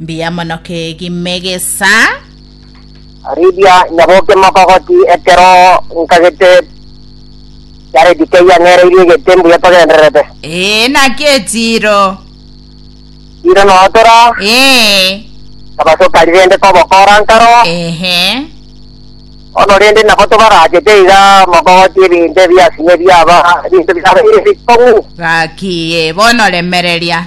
Mbuya mono kegi Megesa. Aribia nyaboke mogogoti ekero nkagete Yaredi keyia ng'ereirie egete mbuya togendererete. Ee, naki etiiro. Tiiro notora. Ee. Tabasoka rirende kobokora nkaro. Ehe. Bono rende nabo tobarachete iga mogogoti ebinto ebiasinye ebiaba ebinto biabeire ebikong'u. Gaki, ee, bono remereria.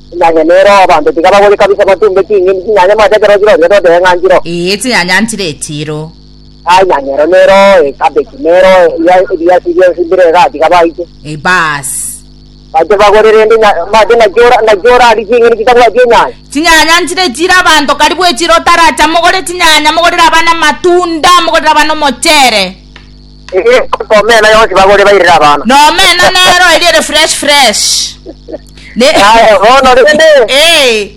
Enyanya nero abanto tiga bagore kabisa batumbe ching'indi chinyanya mwaete ekero chirorio totebe ng'a nchiro. Ee chinyanya nchire echiro. Aa enyanya ero nero ee cabbage nero ebiya ebiyasi bionsi mbire igaa tiga baite. Ee baas. Baite bagore rende nya mwaete naki ora naki orari ching'indi chitabwati enyanya. Chinyanya nchire echiro abanto karibu echiro otaracha mogore chinyanya mogorere abana amatunda mogorere abana omochere. Ee, korwa omena yonsi bagore bairere abana. Na omena nero eriere fresh fresh. Ne Aye, bono rende, Eh.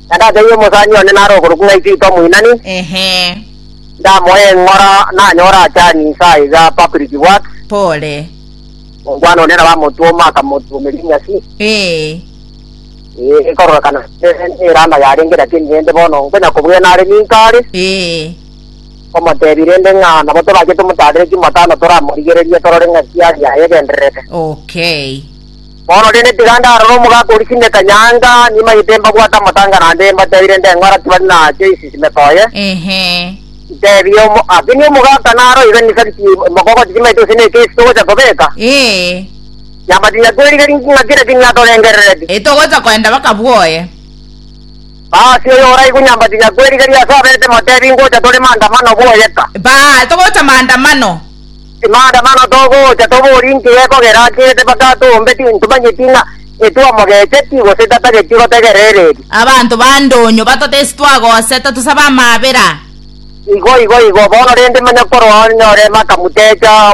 na ndatebirie omosani one nare okorokwa ng'a Isiko Moinani, Ehe. ndamoe eng'ora nanyore achani insa iga public works, Pole. omwana one nabo amotwoma akamotuomeria enyasi, Eh. ee, kororokana neranda yarenge, lakini rende bono nkonya kobwena are ninka are, Eh. komotebia rende ng'a nabo tobachete omotaarere chimbo tano toramorigererie torore ng'aki yare yaye egendererete. Okay. Bono rende tiga ndarore omogaka oria chinde kanyanga, nimanyete mbabwate amatanga naende mbatebie rende ng'a ng'ora tibari na choice ime toye. Ehe. Ntebie omo- ase ni omogaka naro iga in fact mokogoti timanyete gose ne case togocha kobeka, Ee. nyabatinya twerigerie ng'aki lakini niatorengerereti. Ee togocha koenda baka bwoye. Baasi oyo oraigwe nyambatinya kwe rigeria ase aberete motebi ngocha tore maandamano bwoyeka. Baa, togocha maandamano. Maandamano togocha tobori nki gekogera akirete mpaka atoombe ti ntomanyeti ng'a etwamogecheti gose tatageti gotegerera ereri. Abanto ba ndonyo batotesi twagose totosabe amaabera. Igo igo igo bono rende manya korwa onyore makamutecha.